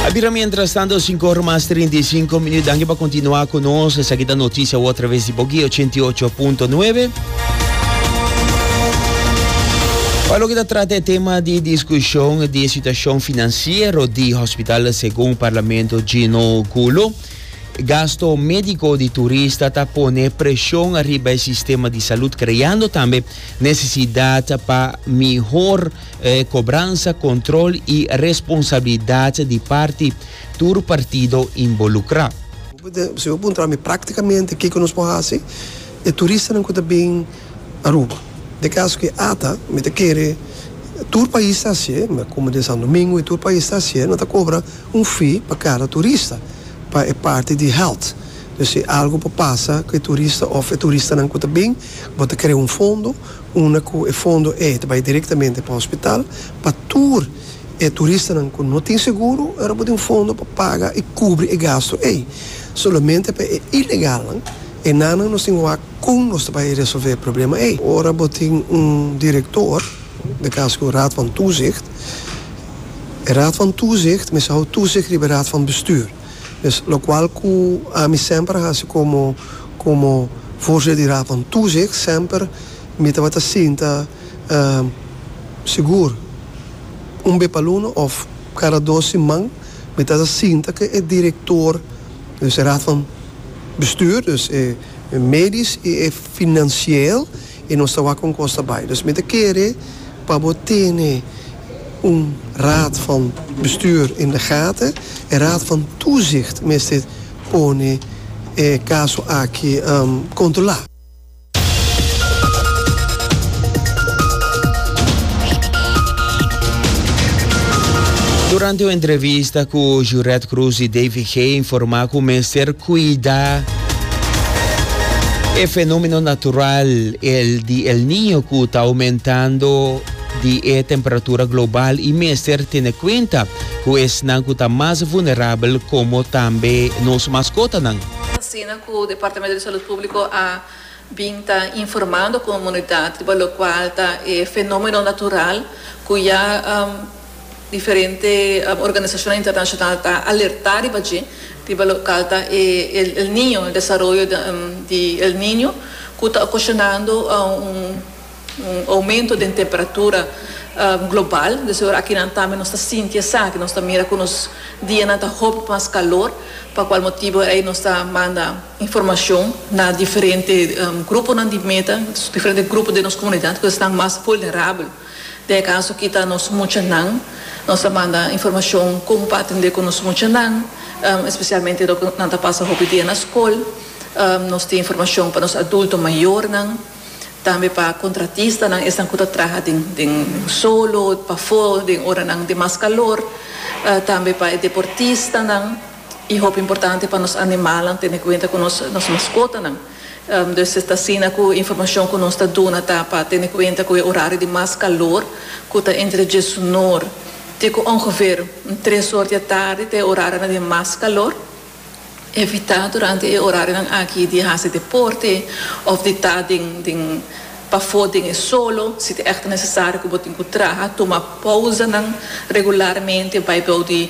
A bira mientras tanto, 5 horas más 35 minutos. Danke pa continuar con nos. Esa aquí noticia a través de Bogi 88.9. Pa lo que ta trata el tema de discusión de situación financiero de hospital según Parlamento Gino Gulo. Gasto médico de turista ta pone presión arriba el sistema de salud, creando también necesidad pa mejor E kobransa, kontrol i responsabilidat di parti tur partido inbolukrá. Si bo puntra mi práktikamente kiko nos por hasi e turistanan ku ta bin Aruba? Den kaso ku e ata mi ta kere tur pais ta hasié, komo den Santo Domingo i tur pais ta hasié, no ta kobra un fee pa kada turista pa e parti di health. Pues si algu por pasa ku e turista òf e turistanan ku ta bin bo ta krea un fondo. unda ku e fondo ei ta bai direktamente pa hospital pa tur e turistanan ku no tin seguro, ora bo tin un fondo pa paga i kubri e gastu ei. Solamente pa e ilegalnan, enannan nos tin wak kon nos ta bai resolvé e problema ei. Ora bo tin un direktor, na kaso ku Raad van Toezicht, e Raad van Toezicht mester hou toezicht riba e Raad van Bestuur. Pues locual cu ami semper a haci como como Forza di Rapan Tuzicht semper mi tabata sinta sigur un be pa luna of cada dos siman mi ta sa sinta cu e director dus e Raad van Bestuur dus e medisch y e financieel I nos ta wak un kos ta bai. Dus mi ta kere pa bo tene un Raad van Bestuur in de gaten. E Raad van Toezicht mester pone e kaso aki kontrolá. Durante un entrevista ku Juret Croes i Davy Gee informá ku mester kuidá. E fenomeno natural el di El Niño ku ta oumentando di e temperatura global i mester tene kuenta ku esnan ku ta mas vulnerabel komo tambe nos maskotanan. Es asina ku Departamento di Salud Públiko a bin ta informando komunidat riba lokual ta e fenomeno natural ku ya. Diferente organisashonnan internashonal ta alertá riba dje, riba lokal ta e El Niño, el desaroyo di El Niño, ku ta okoshonando un oumento den temperatura global. Desi ora aki nan tambe nos ta sinti esaki, nos ta mira ku nos dianan ta hopi mas kalor, pa kual motibu ei nos ta manda informashon na diferente gruponan di meta, diferente grupo den nos komunidat, ku esnan mas vulnerabel. Den e kaso kita nos muchanan, nos ta manda informashon kon pa atendé ku nos muchanan, espesialmente ora ku nan ta pasa hopi dia na skol. Nos tin informashon pa nos adulto mayornan, tambe pa kontratistanan, esnan ku ta traha den den solo, pafó, den oranan di mas kalor, tambe pa e deportistanan i hopi importante pa nos animalnan, tene kuenta ku nos nos maskotanan. Dus e ta asina ku e informashon ku nos ta duna ta pa tene kuenta ku e orario di mas kalor ku ta entre diesunor te ku ongever un tres or di e tardi ta e orarionan di mas kalor. Evitá durante e orarionan aki di hasi deporte òf di ta den den pafó den e solo. Si ta èkto nesesario ku bo tin ku traha, tuma pousanan regularmente, bai bou di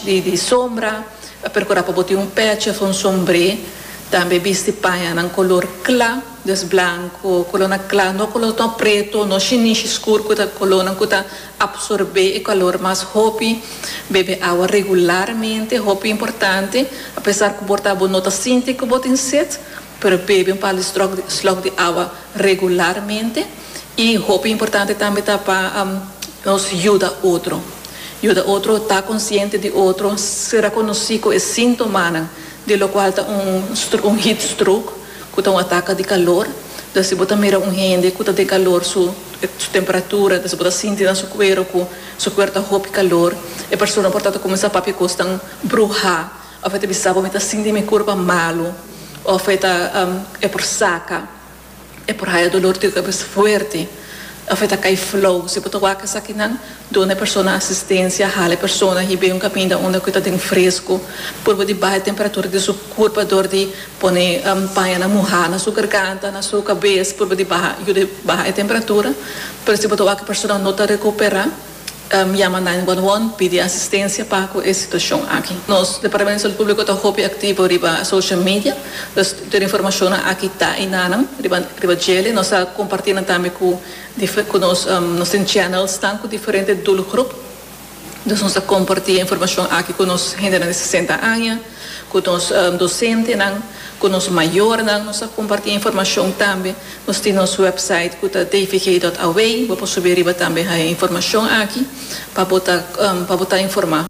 di sombra. A percura pa bo tin un peche of un sombre. Tambe bisti pañanan color cla, des blanco, colornan cla, no colornan preto, no shinishi scur cu ta colornan cu ta absorbe e calor mas hopi. Bebe awa regularmente, hopi importante, a pesar cu bo ta bo no ta sinti cu bo tin set. Pero bebe un par di slok di awa regularmente i hopi importante tambe ta pa nos yuda otro. Yuda otro ta konsiente di otro, sera konosí ku e síntomanan di lokual ta un un heat stroke ku ta un ataka di kalor. Entonces si bo ta mira un hende ku ta den kalor su su temperatura, entonces bo ta sinti na su kuero ku su kuer ta hopi kalor, e persona por tanto kuminsá papia kosnan bruhá. Of e ta bisa bo, Mi ta sinti mi kurpa malu, of e ta, E por saka, e por haya dolor di kabes fuerti, of e ta kai flou. Si bo ta wak esakinan, duna e persona asistensia, hala e persona hib'é un kaminda unda ku e ta den fresku, por bo di baha e temperatura di su kurpa dor di pone pañanan muhá na su garganta, na su kabes, por bo di baha, yud'é baha e temperatura. Pero si bo ta wak e persona no ta rekuperá. yama nine one one pidi asistencia pa cu e situacion aki. Nos Departamento di Salud Publico ta hopi activo riba social media, dus tur e informacionnan aki ta y nanan riba riba djele. Nos ta comparti nan tambe cu dife cu nos nos tin channels tan cu diferente doelgroep, dus nos ta comparti e informacion aki cu nos hendenan di sesenta aña. Ku nos dosentenan, ku nos mayornan nos a kompartí informashon tambe. Nos tin nos wèpsait ku ta dvg.away. Bo por subi riba tambe haya informashon aki pa bo ta pa bo ta informá.